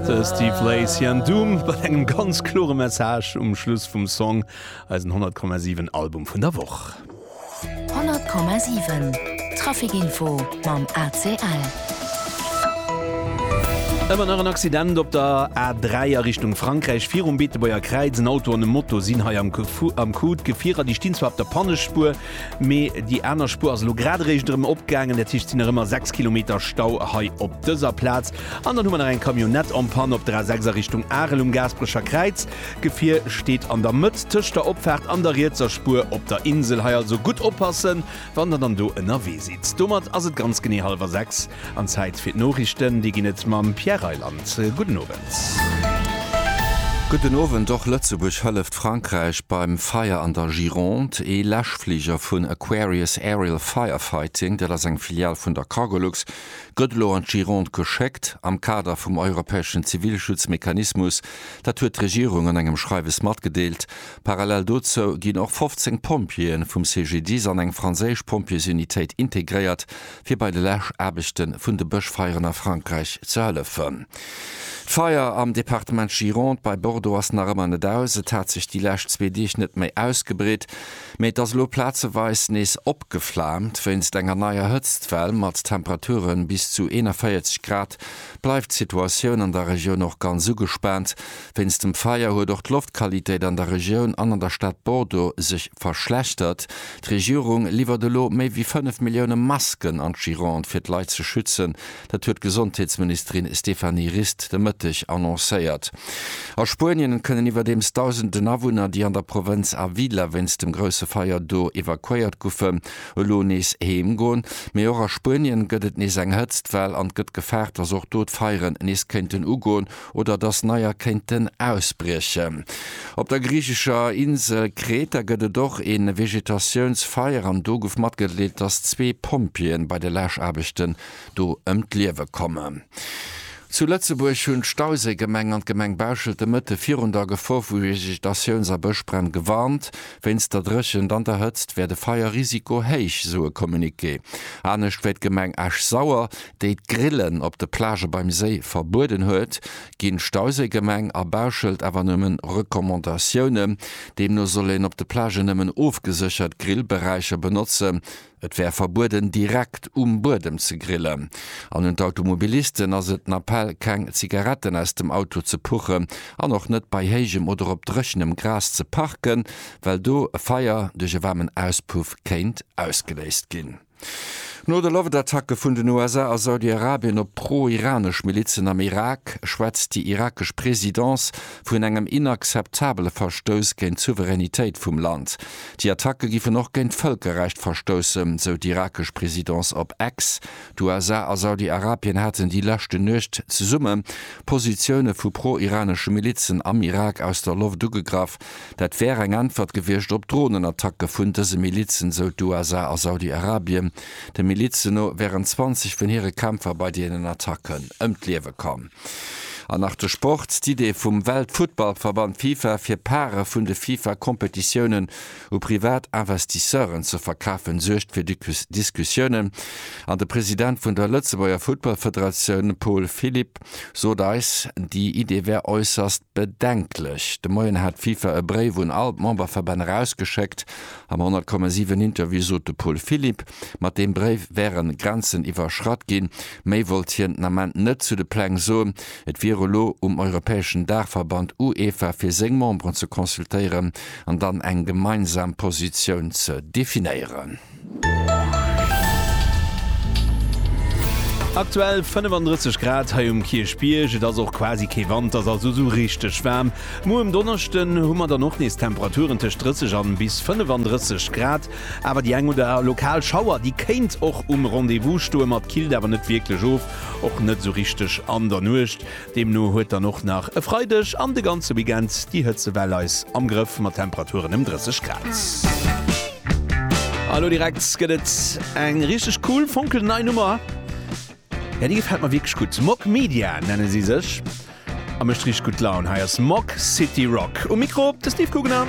De Steve Lace hien Doom mat engem ganz klore Message um Schluss vum Song, eisen 100,7 Album vun der Woch. 100,7 Traficinfo mam ACL. Ëmmer nach en Accident op der A3 a Richtung Frankräich. Virum Beetebuerger Kräiz en Auto an e Moto sinn hei am Coup. D'Gefierer, déi stinn zwar op der Pannespuer, Mee déi aner Spuer ass elo grad eréischt erëm opgaangen, dat heescht, et sinn nach ëmmer 6 Kilometer Stau hei op dëser Plaz. An dann hu mer nach eng Camionnette en panne op der A6 a Richtung Arel um Gaasperecher Kräiz. D'Gefier steet an der Mëtt tëscht der Opfaart an der rietser Spuer op der Insel. Hei also gutt oppassen, wann Der dann do ënnerwee sidd. Domat ass et ganz genee hallwer sechs an Zäit fir d'Noriichten. Déi ginn et mam Pierre Reyland. Gudden Owend. Gudden Owend. Och Lëtzebuerg hëlleft. Frankräich beim Feier an der Gironde. Ee Läschfliger vun Aquarius Aerial Firefighting, dat ass eng Filial vun der Cargolux, gëtt elo an d'Gironde geschéckt am Kader vum europäeschen Zivilschutzmechanismus. Dat huet d'Regierung an engem Schreiwes matgedeelt. Parallel dozou ginn och 15 Pompjeeë vum CGDIS an eng franséisch Pompjeesunitéit integréiert, fir bei de Läschaarbechte vun de Bëschfeieren a Frankräich ze hëllefen. D'Feier am Departement Gironde bei Bordeaux ass nach ëmmer net aus. Et hat sech déi lescht zwee Deeg net méi ausgebreet, mee et ass elo plazeweis nees opgeflaamt. Wéinst enger neier Hëtztwell mat Temperature bis zu 41 Grad bleift d'Situatioun an der Regioun och ganz ugespaant. Wéinst dem Feier huet och d'Loftqualitéit an der Regioun an an der Stad Bordeaux sech verschlechtert. D'Regierung liwwert elo méi wéi 5 Millioune Masken an d'Gironde fir d'Leit ze schützen. Dat huet d'Gesondheetsministerin Stéphanie Rist de Mëtteg annoncéiert. A Spuenien kënnen iwwerdeems dausenden Awunner, déi an der Provënz Avila wéinst dem grousse Feier do evakuéiert goufen, elo nees heem goen. Mee och a Spuenien gëtt et nees eng Hëtztwell an et gëtt gefaart, datt och do d'Feieren nees kéinten ugoen. oder dass neier kéinten ausbriechen. Op der griichescher Insel Kreta gëtt et och e Vegetatiounsfeier an do gouf matgedeelt, dass zwee Pompjeeën bei de Läschaarbechten do ëm d'Liewe kommen. Zu Lëtzebuerg hunn d'Stauséigemeng an d'Gemeng Bauschelt de Mëtte virun der Gefor vu Vegetatiouns a Bëschbränn gewarnt. Wéinst der Dréchent an der Hëtzt wär de Feierrisiko héich, sou e Communiqué. Anescht wéi d'Gemeng Esch-Sauer, déi d'Grillen op de Plagë beim Séi verbueden huet, ginn d'Stauséigemeng a Bauschelt awer nëmmen Recommandatiounen. Deemno soll een op de Plagë nëmmen ofgeséchert Grillberäicher benotzen. Et wär verbueden, direkt um Buedem ze grillen. An un d'Automobilisten ass et den Appell, keng Zigaretten aus dem Auto ze puchen an och net bei héijem oder op dréchenem Gras ze parken, well do e Feier duerch e waarmen Auspuff kéint ausgeléist ginn. No de Loftattacke vun den USA a Saudi-Arabien op pro-iranesch Milizen am Irak, schwätzt déi irakesch Presidence vun engem inakzeptabele Verstouss géint d'Souveränitéit vum Land. Déi Attacke géifen och géint d'Vëlkerrecht verstoussen, sou d'irakesch Presidence op X. D'USA a Saudi-Arabien haten déi leschte Nuecht zesumme Positioune vu pro-iranesche Milizen am Irak aus der Loft ugegraff. Dat wär eng Äntwert gewiescht op Dronenattacke vun dëse Milizen, sou d'USA a Saudi-Arabien. De Milizen no wären 20 vun hire Kämpfer bei deenen Attacken ëm d'Liewe komm. An nach de Sport, D'Idee vum Weltfuttballverband Fifa, fir Parë vun de Fifa-Kompetitiounen u privat Investisseuren ze verkafen, suergt fir Diskussiounen an de President vun der Lëtzebuerger Futtballfederatioun Paul Philipp, Sot eis, déi Idee wär äusserst bedenklech. De Moien hat d'FIFA e Bréif un all d'Memberverbänn erausgeschéckt. Am 100,7 Interview sot de Paul Philipp, mat deem Bréif wäre Grenzen iwwerschratt ginn. Méi wollt hien den Ament net zu de Pläng soen. Et wier elo um europäeschen Daachverband UEFA, fir seng Memberen ze consultéieren an dann eng gemeinsam Positioun ze definéieren. Aktuell 35 Grad hei um Kierchbierg, et ass och quasi kee Wand, ass also esou richteg waarm. Muer um Donneschden hu mer dann och nees Temperaturen tëscht 30 an bis 35 Grad, awer déi eng oder lokal Schauer, déi kéint och um Rendez-vous stoen, ma et killt awer net wierklech of, och net esou richteg an der Nuecht. Deemno huet dann och nach e Freideg an de ganze Weekend déi Hëtzewell eis am Grëff mat Temperaturen ëm 30 Grad. A lo direkt gëtt et eng richteg cool, fonkelnei Nummer. Jo, déi gefält mer wierklech gutt. Mog Media nenne si sech a mécht richteg gutt Laun. Hei ass Mog City Rock. Um Mikro de Steve Gugner.